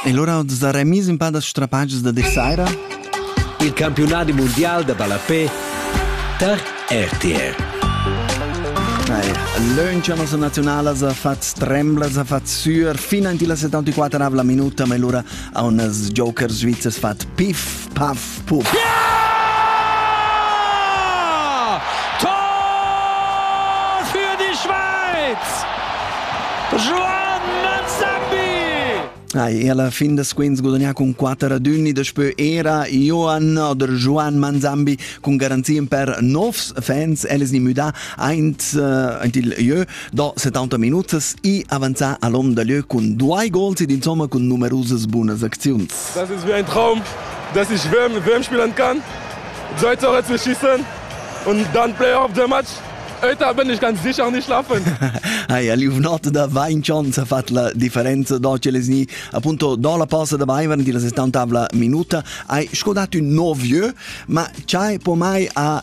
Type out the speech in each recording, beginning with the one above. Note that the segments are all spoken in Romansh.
E lura dus da remis in pa da strapatgs da dir saira. Il campiunadi mondial da ballapé tar RTR. Lanciamo su nazionale ha fatto tremblas, ha fatto sur fino in la 74 minuta, ma allora a un joker svizzero fatto piff Puff, puff. Ja! Tor für die Schweiz! Joan Manzambi! E alla fin da squinz gudagnà con 4 raduni daspö era Joan oder Joan Manzambi con garantien per novs fans eles ni müda aint uh, int il jeu da 70 minutas e avanzà all'om da lieu con due gols ed insomma con numerosas bunas acziuns. Das ist wie ein Traum, dass ich WM, WM spielen kann. Sollte auch jetzt nicht schießen und dann Playoff der Match. Heute bin ich ganz sicher nicht schlafen. Hai Aliunot da Vincianza fatto la differenza d'oggi lesni appunto do la pausa da Weimar di la 70 minuta hai scodato un 9 ma c'hai pomai a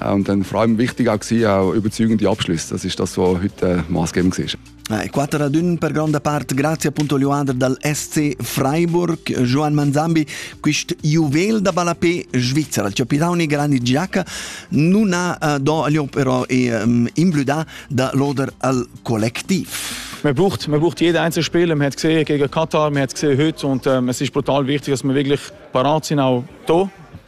Und dann vor allem wichtig auch auch überzeugend die Abschlüsse. Das ist das, was heute maßgebend war. Eh, 4 ad 1 per gronda parte grazie appunto Joander dal SC Freiburg, Joan Manzambi, quist juvel da balapé Svizzera, il capitano grandi giacca non ha eh, do però e um, imblüda da loder al collectiv. Man braucht, man braucht jeden einzelnen Spieler. Man hat gesehen gegen Katar, man hat gesehen heute und ähm, es ist brutal wichtig, dass wir wirklich parat sind, auch hier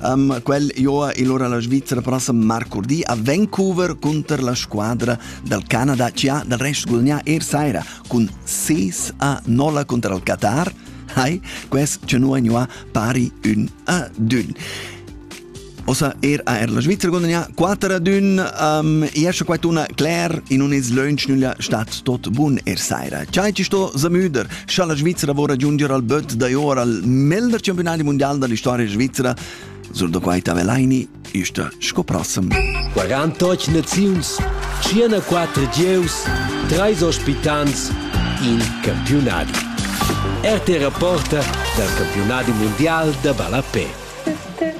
Um, quel joa il ora la Svizzera prossim marcurdi a Vancouver contro la squadra dal Canada CA dal rest gudagnà ier saira cun 6 a 0 contro il Qatar. Hai, quest ce nu agnuà pari un a dun. Osa er a er la Svizzera gudagnà 4 a 1. Um, esce quaituna Claire in un is lönch nülla stat tot bun er saira. Ciai ci sto Zamüder Scha la Svizzera vorra giungier al böt da or al melder campionadi mondial da l'historia svizzera, sur da quai Tavelaini, ista sco prossem. 48 naziuns, 104 gieus, 3 ospitants, in campionadi. RT Rapporta dal campionadi mondial da ballapè.